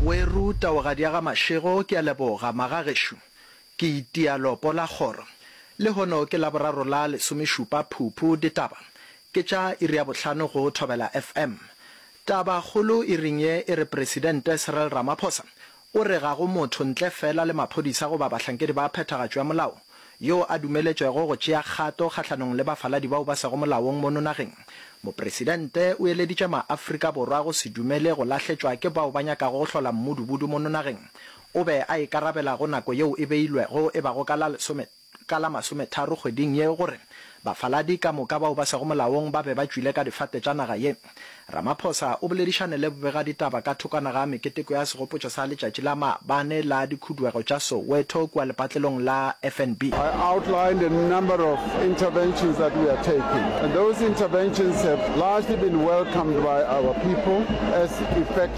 We ruta o gadiaga Mashego ke a leboga maga gešo ke itia lopo la kgoro le hono ke laboraro la lesomešupa phuphu ditaba ke tša iri ya bohlano go Thobela FM taba kgolo iring ye e re presidente Cyril Ramaphosa O re ga go motho ntle feela le maphodisa goba bahlankedi ba phethagatšo ya molao yoo a dumeletšwego go tšea kgato kgahlanong le bafaladi bao ba sego molaong mono nageng. Mopresidente o eleditše maAfrika Borwa go se dumele go lahletšwa ke bao ba nyakago go hlola mmudubudu mono nageng. O be a ikarabela go nako yeo e beilwego e bago ka la lesome. ka la masometharo kgweding ye gore bafaladi ka moka bao ba sego molaong ba be ba tšwile ka difate tša naga ye. Ramaphosa o boledišane le bobegaditaba ka thokwana ga meketeko ya segopotšo sa letšatši la mabane la dikhuduego tša Soweto kua lepatlelong la FNB. I outlined a number of interventions that we are taking and those interventions have largely been welcomed by our people as effective.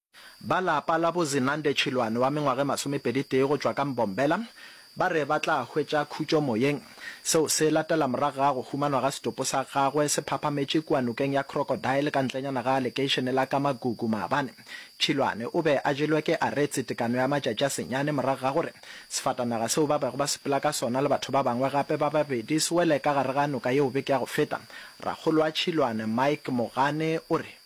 Ba lapa la bo Zinande Chilwane wa mengwaga e masomepeditee go tšwa ka Mbombela ba re ba tla hwetša khutšo moyeng. Seo se latela morago ga go humanwa ga setopo sa gagwe se phaphametše kua nokeng ya Crocodile ka ntlenyana ga lekeišene la Kamagugu maabane. Chilwane o be a jelwe ke aretse tekano ya matšatši a senyane morago ga gore sefatanaga seo ba bego ba sepela ka sona le batho ba bangwe gape ba babedi se wele ka gare ga noka yeo beke ya go feta. Rakgolo wa Chilwane Mike Mogane o re.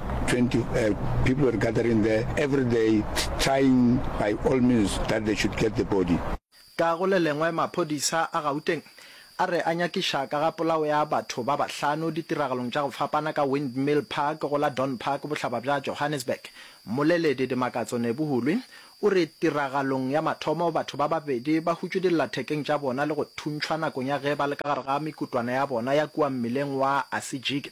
20 uh, people were gathering there every day trying by all means that they should get the body. Ka go le lengwe maphodisa a Gauteng a re a nyakiša ka ga polao ya batho ba bahlano ditiragalong tša go fapana ka Windmill Park go la Don Park bohlaba bja Johannesburg. Mmoleledi Dimakatso Nebuhulwi o re tiragalong ya mathomo batho ba babedi ba hutšwe dillathekeng tša bona le go thuntšhwa nakong ya ge ba le ka gare ga mekutwana ya bona ya kua mmileng wa Asijiki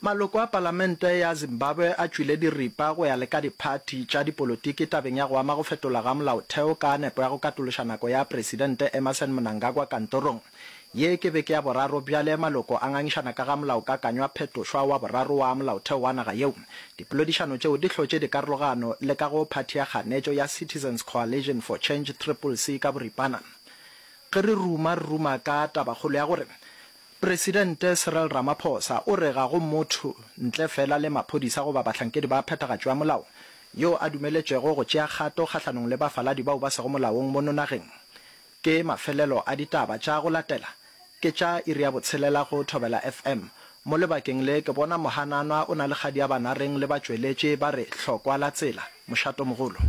Maloko a palamente ya Zimbabwe a tšwile diripa go ya le ka diphathi tša dipolotiki tabeng ya go ama go fetola ga molaotheo ka nepo ya go katološa nako ya Presidente Emmerson Mnangagwa kantorong ye. Ke beke ya boraro bjale maloko a ngangišana ka ga molaokakanywa phetošwa wa boraro wa molaotheo wa naga yeo. Dipolodišano tšeo di hlotše dikarologano le ka go phathi ya kganetšo ya Citizens Coalition for Change, Triple-C ka boripana. Ge re ruma, re ruma ka tabakgolo ya gore Presidente Cyril Ramaphosa o re ga go motho, ntle fela le maphodisa goba bahlankedi ba phethagatšo ya molao, yo a dumeletšwego go tšea kgato kgahlanong le bafaladi bao ba sego molaong mono nageng. Ke mafelelo a ditaba tša go latela, ke tša iri ya botshelela go Thobela FM. Mo lebakeng le ke bona mohananwa o na le kgadiabanareng le batšweletši ba re hlokwa la tsela, mošatomogolo.